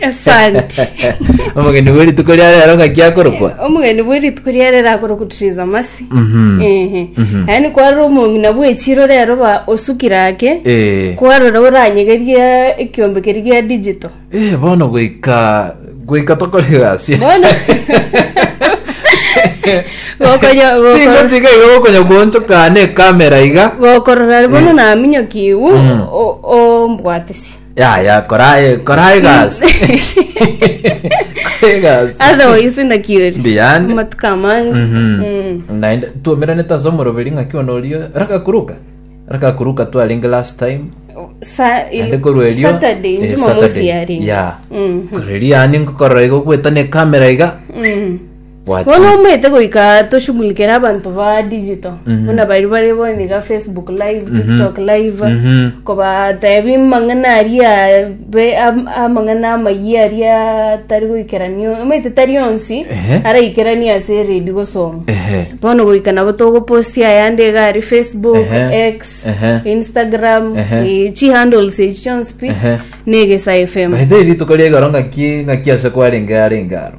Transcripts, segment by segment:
Esanti. omogeni bwe rituko ria rero ng'aki akorokwa omogeni bwe rituko ria rero akorokwa Teresa Masi Mhm. ehe Mhm. yaani kwarora omong'ina bw'echiro rero ba osukire ake Eh. kwarora oranyegerie ekiombe keri gia digital Eh, bono goika goika tokore gasi bono gokonya gokora tingotiga iga gokonya kuonchokana ekamera iga gokorora bono naminyokiwu ombwatisi yaya kora eh, kora egasi Kora egasi otherwise ndakiori Mbiyande. amatuko amange Mhm. Mm. naende tuomerane tase omoroberi ng'aki ono orio rakakuruka rakakuruka twarenge last time Sa- il- naende korwa erio Saturday, eh, Jumamosi Saturday. yarenge. ya Mhm. korwa erio yani ngokorora igo gwetana ekamera iga Mm. Bono Wati. omanyete goika toshughulikere abanto ba digital buna bari bare bono iga facebook live tiktok live Mhm. kobatebi mang'ana aria be- am- amang'ana amayia aria tari goikerania omanyete tari onsi Ehe. araikerani ase eredi gosoma Ehe. bono goika nabo togoposti ayande iga ari facebook Ehe. x Ehe. instagram Ehe. eh, chi handles echi chionsi pi Ehe. na egesa fm By the way, rituko riegoro ng'aki ng'aki ase kwarenge arenge aro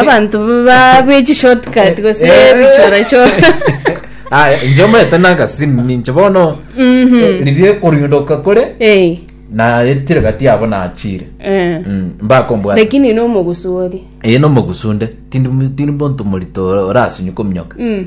abanto ba- bwe chishortcut gose Eh, eh. bichorachora aya inche omaete nagasimu ninche bono Mhm. eh, riria ekoriundoka kore Eh, naetire gati yabo nachire eh. Mm, mbakombwata lakini nomogusori eye nomogusunde tindi tindi monto morito orasunyuka ominyoka Mm.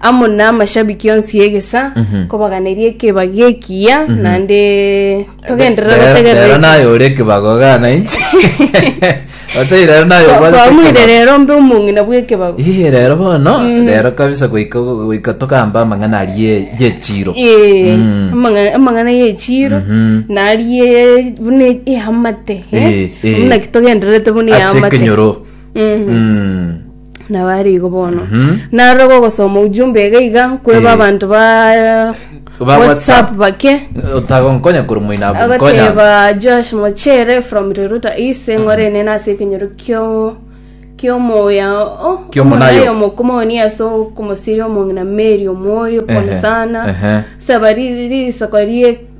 amo namashabiki onsi y'egesa kobaganeria ekebago ekiya naende togenderere Rero- gotegerera rero naye ore ekebago gana inche otari rero naye Kwa- obwate kwamuire ekebago. rero mbe omong'ina bw'ekebago Iye rero bono rero kabisa goika goika tokamba amang'ana arie yechiro Eh, Mm. amang'a- amang'ana y'echiro Mhm. narie buna eamate Eh, eh. buna kitogendererete buna ase eamate ekenyoro Mm. Mm. nabo ari igo bono narora gogosoma ujumbe iga iga nkweba Eh. abanto ba Ba WhatsApp. whatsapp bake otagonkonya kore moino abwo nkonya agoteba josh mochere from riruta ise ng'orene nase ekenyoro kio kiomoya oh, Kiomonayo. omonayo mokomoni ase okomosiria omong'ina meri omwoyo pole Ehe, sana ehe. saba ri- risoko rie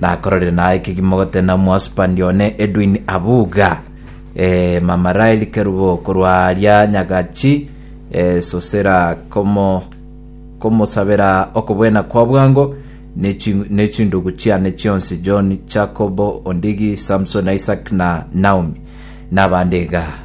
Nakororire naye ekegima ogotena Mwasupandi one Edwin Abuga, eh, Mama Rael Kerubo korwa aria Nyagachi, eh, Sosera komo komosabera okobwena kwa bwango ne chi- ne chindugu chiane chionsi John, Jacobo, Ondigi, Samson, Isaac na Naomi nabande iga.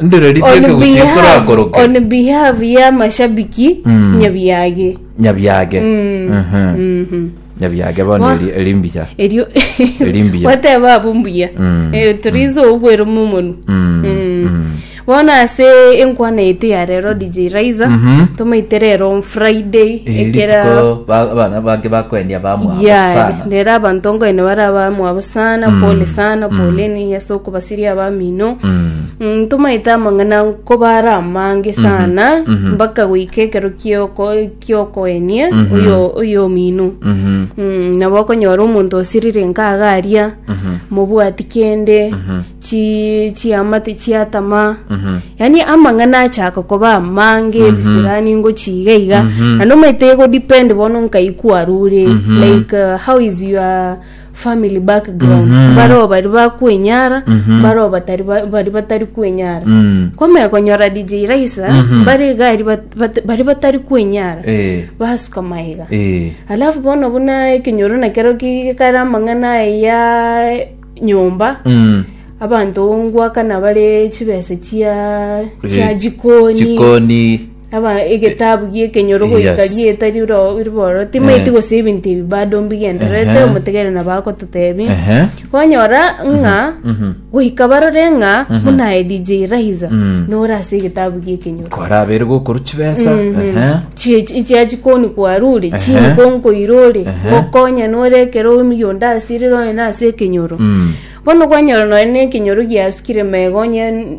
Ndire ritueke On gusio behalf, torakoroke. on behalf ya mashabiki Mm. nyabiage Nyabiage. Mhm. Nyabiage bono Wa- eri- eri mbuya. erio Eri mbuya. wateba abo mbuya Mm. Eh, torizo obwero momonu Mm. Mm. bono ase enkwana ete ya rero dj raiza Mhm. tomaite rero on friday Eri ekera rituko ba- abana bange bakwendia bamwabo ya sana. rero abanto ngoine bara bamwabo sana pole sana poleni ase okobasa tiri abamino Mm, tomaete amang'ana nkobara amange sana mpaka goika ekero kioko- kiokoenia oyo- oyo omino Mhm. Mm, nabo okonyora omonto osirire nkagaria mobwati kende chi- chiamate chiatama yaani amang'ana achaka koba amange ebisirani ngochiga iga na nomaete egodepend bono nkaikwarure like uh, how is your family background Mhm. baroo bari bakwenyara Mhm. baroo batari ba- bari batari kwenyara Mm. kwamaya konyora dj raisa Mhm. bari gari bat- bat- bari batari kwenyara Eh. basuka maiga Eh. alafu bono buna ekenyoro nakero kare amang'ana aye ya nyomba Mm. abanto ngwakana bare chibese chia chia Eh, jikoni jikoni Aba egetabu gi'ekenyoro goika Yes. gieta riro ribororo timaeti Eh. gose ebinto ebi bado mbigendererete Ehe. omotegerere na bagototebi Ehe. kwanyora ng'a goika barore ng'a buna aye dj raiza Mhm. nore ase egetabu gi'ekenyoro kora abere gokoru chibesa Ehe. chiachi koni kwarure Ehe. chini konkoirore Ehe. gokonya nore ekero omiyo onde asirire onye nase ekenyoro Mm. bono kwanyora nonye na ekenyoro giasukire mega onye